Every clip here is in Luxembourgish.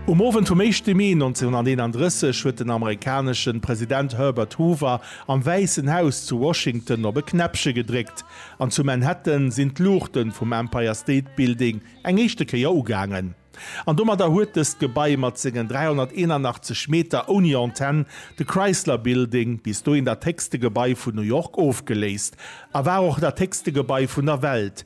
Um Owend vum éischte Mee 1931 huet den amerikaneschen President Herbert Hoover am Wäissen Haus zu Washington op e Knäppche gedréckt, an zu Manhattan sinn d'Luuchten vum Empire State Building eng éischte Kéier ugaangen. An domadder huet dëst Gebai mat sengen 381 Meter ouni Antenn de Chrysler Building, bis dohin dat héchste Gebai vun New York, ofgeléist a war och dat héchste Gebai vun der Welt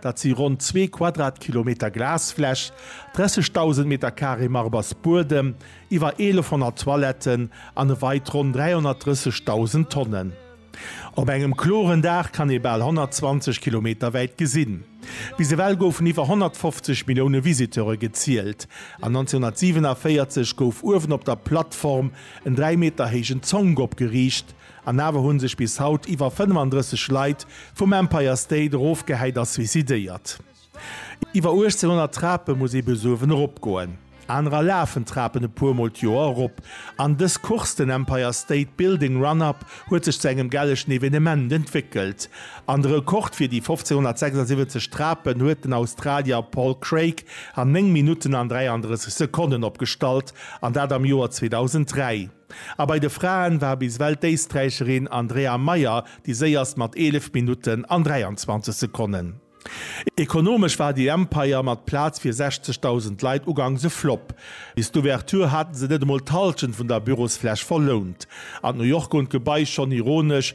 Dat si ronn zwee Quadratkilometer Glasfläch, 30.000 Meter Carré Marbersbuedem, iwwer 1.100 Toiletten an e Weit ronn 330.000 Tonnen. Op engem kloren Dag kann ee bal 120 Kilometer wäit gesinn. Bis ewell goufen iwwer 150 Millioune Visiteure gezielt an 1947 gouf uewen op der Plattform en 3 Meter héijen Zonk opgeriicht, An awer hunn sech bis haut iwwer 35 Leit vum Empire State erofgehäit a suicidéiert. Iwwer 1800 Trape muss ee besuerwen eropgoen. Anerer lafen d'Trapen e puer mol d'Joer erop. An dës Course, den Empire State Building Run Up, huet sech zu engem gellechen Evenement entwéckelt. An de Rekord fir déi 1576 Trapen huet den Australier Paul Craig an 9 Minutten an 33 Sekonnen opgestallt, an dat am Joer 2003. A bei de Fraen war bis ewell d'Éisträicherin Andrea Mayer déi séierst mat 11 Minutten an 23 Sekonnen. Ekonomesch war déi Empire mat Plaz fir 60.000 Leit uganks e Flopp. Bis d'Ouverture hate se net emol d'Hallschent vun der Bürosfläch verlount. An d'New York hunn d'Gebai schonn ironesch